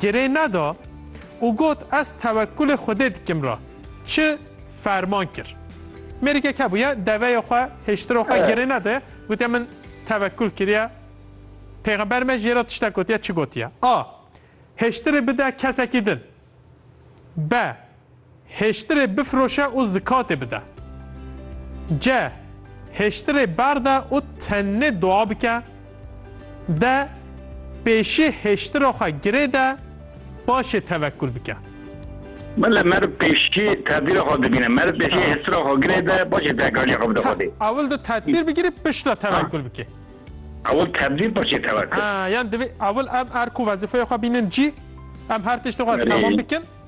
Girê neda û got ez tewekkulê Xwedê dikim re çi ferman kir. Mêrikek hebûye deveyê xwe hêştira xwe girê nede gotiye min tewekkul kiriye Pêxember me jê re tiştek gotiye çi gotiye A. Hêştirê bide kesekî din B. Hêştirê bifiroşe û zikatê bide. C. Hêştirê berde û tenê dua bike. D. Pêşî hêştira xwe girê de paşê tevekul bike. Bile merv pêşî tedbîra xwe dibîne. Merv pêşî hêştira xwe girê de paşê tevekaliya xwe bide Xwedê. Ewil tu tedbîr bigirî pişt re tevekul bikê. Ewil tedbîr paşê tevekul. Yan divê ewil em erk û wezîfeya xwe bînin cî. Em her tiştê xwe temam bikin.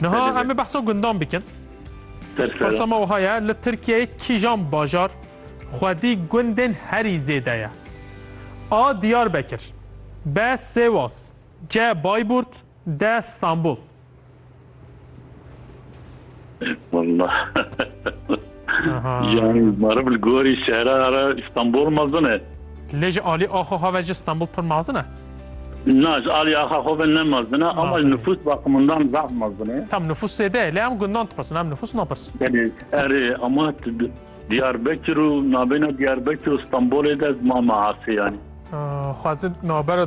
Niha em ê behsa gundan bikin. Persa me wiha ye, li Tirkiyeyê kîjan bajar xwedî gundên herî zêde ye? A. Diyarbekir B. Sêwas C. Bayburt D. Stenbol Wallah. Yani marı bil gori şehra ara İstanbul mazine. Lê ji alî axo xwe ji Stanbul pir mazin e? Na ji alî axa xwe ve ne mazin e ama ji nifûs baqimindan zaf mazin e. Tam nifûs zêde ye lê em gundan dipirsin em nifûs napirsin. Belê erê ama Diyarbekir û nabêna Diyarbekir û Stanbolê de mama asê yanî. Xwezin nabera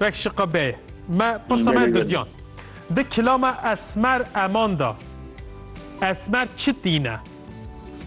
Vek şiqa beye. Me pirsa me dudiyan. Di kilama esmer eman da esmer çi tîne?